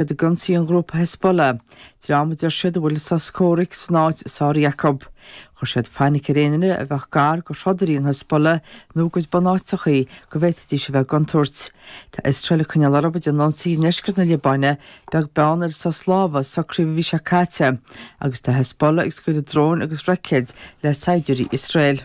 Iad ag ionsaí an ghrúpa Hezbollah, dream a deir siad a bhfuil sos comhraic san áit sáraithe acu. Chuir siad fainic ar aon duine a bheadh gar do throdairí an Hezbollah nó a gcuid bunáiteachaí go bhféadfaidís a bheith i gcontúirt. Tá Iosrael ag coinneáil orthu dá n-ionsaí i ndeisceart na Liobáine, beag beann ar an sos lámhaigh a socraíodh an mhí seo caite, agus tá Hezbollah ag scaoileadh dróin agus roicéad le saighdiúirí Iosrael.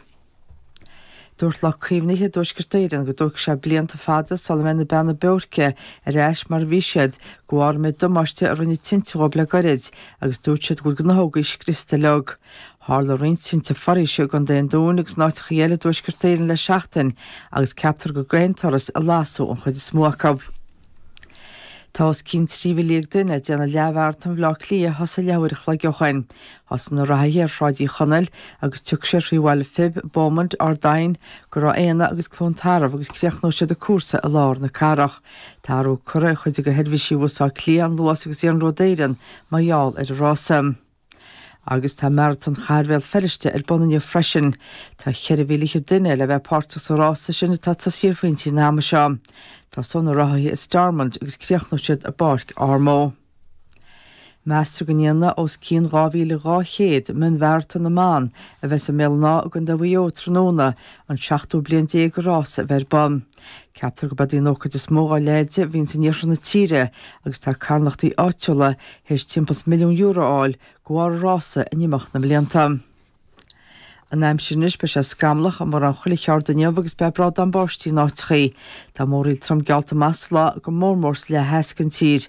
Dúirt lucht caomhnaithe Thuaisceart Éireann go dtógfaidh sé blianta fada sula mbeidh na Beanna Boirche ar ais mar a bhí siad, de bharr an méid damáiste a rinne tinte dhóibh le gairid, agus dúirt siad go bhfuil gnáthógaí scriosta leo. Tharla roinnt tinte foraoise i gContae an Dúin agus in áiteachaí eile i dTuaisceart Éireann le seachtain, agus ceaptar gur d'aon turas a lasadh an chuid is mó acu. Tá os cionn trí mhíle dhéag duine ag déanamh leathmharatón Bhleá Cliath a thosaigh leathuair an chloig ó shin. Thosaigh na reathaithe ar Shráid Uí Chonaill agus tiocfaidh siad thrí bhaile Phib, Beaumont, Ard Aidhin, go Ráth Éanna agus Cluain Tarbh agus críochnóidh siad an cúrsa i lár na cathrach. Tá athrú curtha ar chuid de sheirbhísí Bhus Átha Cliath, an Luas agus Iarnród Éireann mar gheall ar an rása. Agus tá Maratón Chathair Bhéal Feirste ar bun inniu freisin. Tá cheithre mhíle fichead duine le bheith páirteach sa rása sin atá ag tosaí ar phointí an ama seo. Tosóidh na reathaithe i Stormont agus críochnóidh siad i bPáirc Ormeau. Meastar go ndéanfaidh os cionn 2,200 mion-mharatón na mban a bheas i mBéal an Átha i gCondae Mhaigh Eo tráthnóna an seachtú bliain déag don rása a bheith ar bun. Ceaptar gurb eod í an ócáid is mó dá leithéid a bhíonns in iarthar na tíre agus tá carthanachtaí áitiúla théis timpeall is milliún euro a fháil de bharr an rása in imeacht na mblianta. An aimsir anois, beidh sé scamallach i mórán chuile cheard inniu agus beidh brádán báistí in áiteachaí. Tá múraíl trom geallta amach sa lá, go mór mór sa leath theas den tír.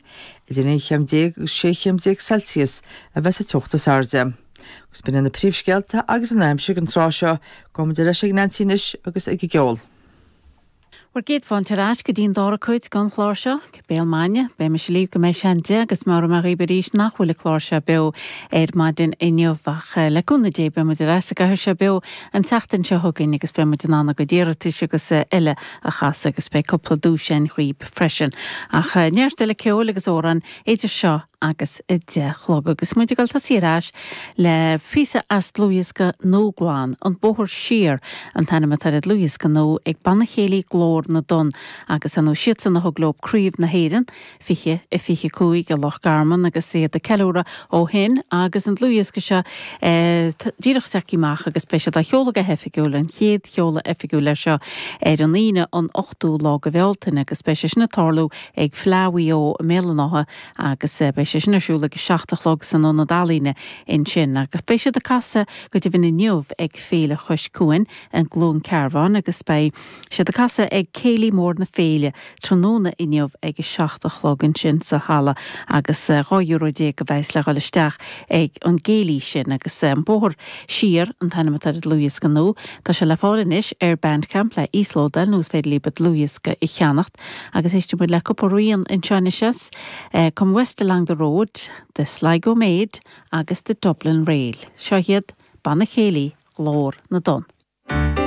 Idir aon chéim déag agus sé chéim déag Celsius a bheas an teocht is airde. Agus b'in iad na príomhscéalta agus an aimsir ag an tráth seo. Gabhfaidh muid ar ais ag Neansaí anois agus ag an gceol. Bhur gcéad fáilte ar ais go dtí an dára cuid den chlár seo, Béal Maidine, beidh mise libh go mbeidh sé an deich agus meabhróidh mé dhaoibh arís nach bhfuil an clár seo beo ar maidin inniu ach le cúnamh Dé beidh muid ar ais sa gcathaoir seo beo an tseachtain seo chugainn agus beidh muid in ann bhur gcuid iarratais agus eile a chasadh agus beidh cúpla duais ann dhaoibh freisin ach neart eile ceoil agus amhráin idir seo agus a deich a chlog agus muid ag dul ag tosaí ar ais le píosa as dlúthdhiosca nua glan, An Bóthar Siar an t-ainm atá ar an dlúthdhiosca nua ag Banna Céilí Glór na dTonn agus ar ndóigh is iadsan a thug leo Craobh na hÉireann, 2025 i Loch Garman agus iad ag ceiliúradh ó shin agus an dlúthdhiosca seo díreach ag teacht amach agus beidh siad á sheoladh go hoifigiúil, an chéad sheoladh oifigiúil air seo, ar an Aoine an 8ú lá de Bhealtaine agus beidh sé sin ag tarlú ag Fleadh Mhaigh Eo i mBéal an Átha, agus beidh sé sin ar siúl ag a seacht a chlog san Ionad Ealaíne ansin, agus beidh siad ag casadh go deimhin inniu ag Féile Chois Cuain i gCluain Cearbháin agus beidh siad ag casadh ag Céilí Mór na Féile tráthnóna inniu ag a seacht a chlog ansin sa halla agus dhá euro déag a bheas sé le dhul isteach ag an gcéilí sin agus An Bóthar Siar an t-ainm atá ar an dlúthdhiosca nua. Tá sé le fáil anois ar Bandcamp le íoslódáil nó is féidir libh an dlúthdhiosca a cheannacht. Agus éistfidh muid le cúpla ríl anseo anois Come West Along the Road, The Sligo Maid agus The Dublin Reel. Seo hiad Banna Céilí Ghlór na dTonn.